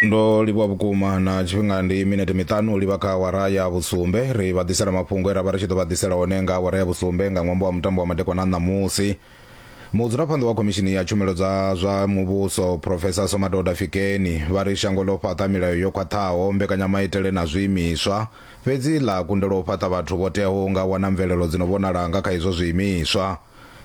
ndo livhuwa vhukuma na tshifhinga ndi minete miṱanu u livha kha awara ya vhusumbe ri vha ḓisela mafhungo e ra vha ri tshi ḓo vha ḓisela one nga awara ya vhusumbe nga ṅwambo wa mutambo wa madekwana ṋamusi mudzulaphanḓa wa khomishini ya tshumelo dza zwa muvhuso profesa somadoda fikeni vha ri shango ḽo fhaṱa milayo yo khwaṱhaho mbekanyamaitele na zwiimiswa fhedzi ḽa kundelwa u fhaṱa vhathu vho teaho nga wana mvelelo dzi no vhonala nga kha izwo zwiimiswa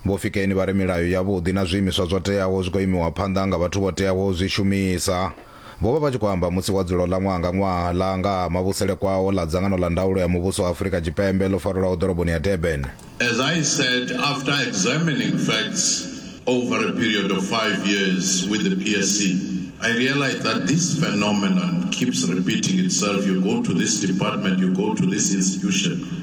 Vho Fikeni vha ri milayo yavhuḓi na zwiimiswa zwo teaho zwi khou imiwa phanḓa nga vhathu vho teaho u zwi shumisa. Vho vha vha tshi khou amba musi wa dzulo ḽa ṅwaha nga ṅwaha ḽa nga ha mavhusele kwao ḽa dzangano ḽa ndaulo ya muvhuso wa Afurika Tshipembe ḽo farelwaho ḓoroboni ya Durban. As I said after examining facts over a period of five years with the PSC, I realised that this phenomenon keeps repeating itself, you go to this department, you go to this institution,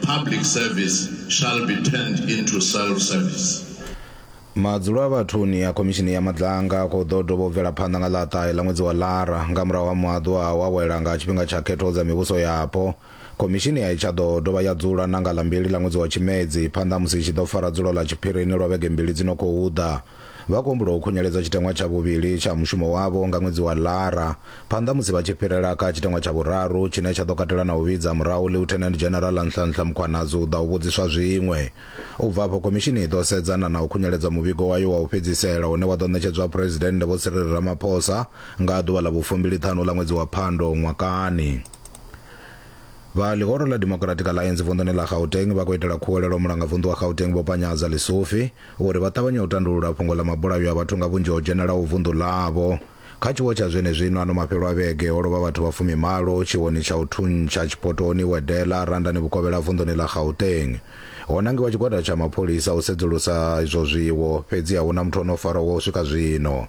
Public service shall be turned into self-service. Madzulo a vhathuni a khomishini ya madlanga ko ḓo dovha u bvela phanḓa nga ḽa ṱahe ḽa ṅwedzi wa lara nga murahu ha muaḓu a wawela nga tshifhinga tsha khetho dza mivhuso yapo khomishini a i tsha ḓo dovha ya dzula na nga ḽa mbili ḽa ṅwedzi wa tshimedzi phanḓa musi i tshi ḓo fara dzulo ḽa tshiphirini lwa vhege mbili dzi no khou ḓa Vha khou humbula u khunyeledza tshiteṅwa tsha vhuvhili tsha mushumo wavho nga ṅwedzi wa Lara, phanḓa musi vha tshi fhirela kha tshiteṅwa tsha vhuraru tshine tsha ḓo katela na u vhidza murahu Lieutenant General Nhlanhla Mkhwanazi u ḓa u vhudziswa zwiṅwe. U bva afho, khomishini i ḓo sedzana na u khunyeledza muvhigo wayo wa u fhedzisela une wa ḓo ṋetshedzwa Phresidennde Vho Cyril Ramaphosa nga ḓuvha ḽa vhu fumbiliṱhanu ḽa ṅwedzi wa Phando ṅwakani. Vha ḽihoro ḽa Democratic Alliance vunḓuni ḽa Gauteng vha khou itela khuwelelo mulangavunḓu wa Gauteng Vho Panyaza Lesufi, vho ri vha ṱavhanya u tandulula fhungo ḽa mabulayo a vhathu nga vhunzhi ho dzhenelaho vunḓu ḽavho. Kha tshiwo tsha zwenezwino, ano mafhelo a vhege, ho lovha vhathu vha fumimalo tshiwoni tsha u thuntsha Tshipotoni, Wedela, Randani Vhukovhela vunḓuni ḽa Gauteng. Ho nangiwa tshigwada tsha mapholisa u sedzulusa izwo zwiwo, fhedzi a hu na muthu o no farwa wa u swika zwino.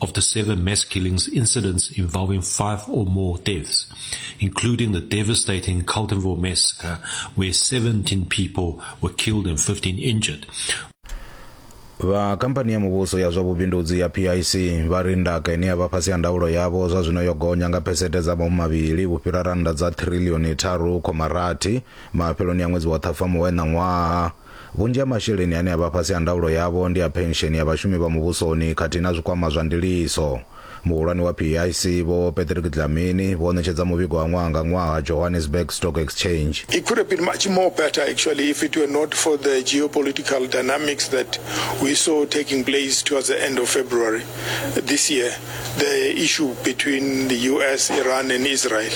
of the seven mass killings incidents involving five or more deaths, including the devastating Carletonville massacre, where 17 people were killed and 15 injured, vha khamphani ya muvhuso ya zwa vhubindudzi ya pic vha ri ndaka ine ya vha fhasi ha ndaulo yavho zwa zwino yo gonya nga phesete dza mamu mavhili vhu fhira rannda dza trilioni tharu khoma rathi mafheloni a ṅwedzi wa ṱhafamuhwe ṋaṅwaha Vhunzhi ha masheleni ane a vha fhasi ha ndaulo yavho ndi a phensheni ya vhashumi vha muvhusoni khathihi na zwikwama zwa ndiliso. Muhulwane wa PIC, Vho Patrick Dlamini, vho ṋetshedza muvhigo wa ṅwaha nga ṅwaha Johannesburg Stock Exchange. It could have been much more better actually if it were not for the geopolitical dynamics that we saw taking place towards the end of February this year, the issue between the US, Iran and Israel.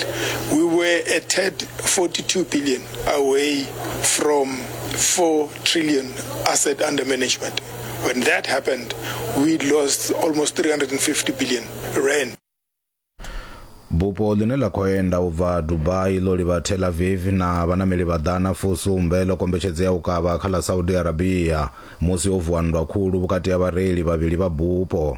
We were a tad 42 billion. away from 4 trillion asset under management. When that happened, we lost almost 350 billion rand. bupo ḽine ḽa khou enda u bva dubai ḽo livha tel aviv na vhanameli vha ḓana fusumbe ḽo kombetshedzo ya u kavha kha ḽa saudi arabia musi ho vuwa nndwa khulu vhukati ha vhareili vhavhili vha bupo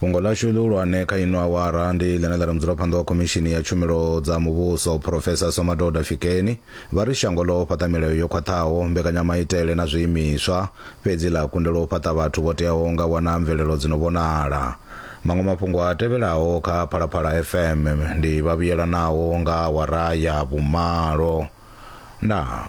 Fhungo ḽashu ḽihulwane kha ino awara ndi ḽine ḽa ri mudzulaphanḓa wa Khomishini ya Tshumelo dza Muvhuso, Phurofesa Somadoda Fikeni, vha ri shango ḽo fhaṱa milayo yo khwaṱhaho, mbekanyamaitele na zwiimiswa, fhedzi ḽa kundelwa u fhaṱa vhathu vho teaho nga wana mvelelo dzi no vhonala. Maṅwe mafhungo a tevhelaho kha Phalaphala FM ndi vhavhuyelanaho nga awara ya vhumalo na.